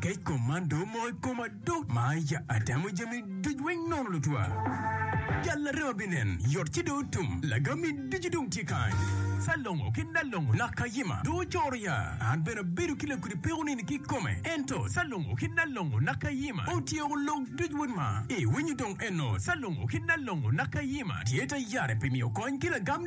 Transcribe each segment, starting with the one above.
Kec kom man do omoko i koma do ma ya atemo jami duc weng nono lutwa. Jal larema binen yot ci do otum lagami ducu dong tye kany. Salongo ki Nalongo nak kayima do ocoro ya an bene abedo ki lakudi peko nini ki kome ento Salongo ki Nalongo nak kayima otyeko lok duc weng ma iwinyo dong eno Salongo ki Nalongo nak kayima tye ta yare pi miyo kony ki lagam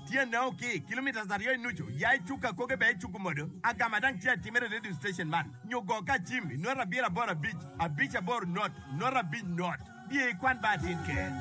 Tyene o ki kilometres aryo i nucu, ya i cuk akoge bene icuku modo. Agama dang tye atimere i radio station man, nyo go ka acim i nota abiro aboro abic, abic aboro not, nota abic not. Biye ikwan ba atin ker.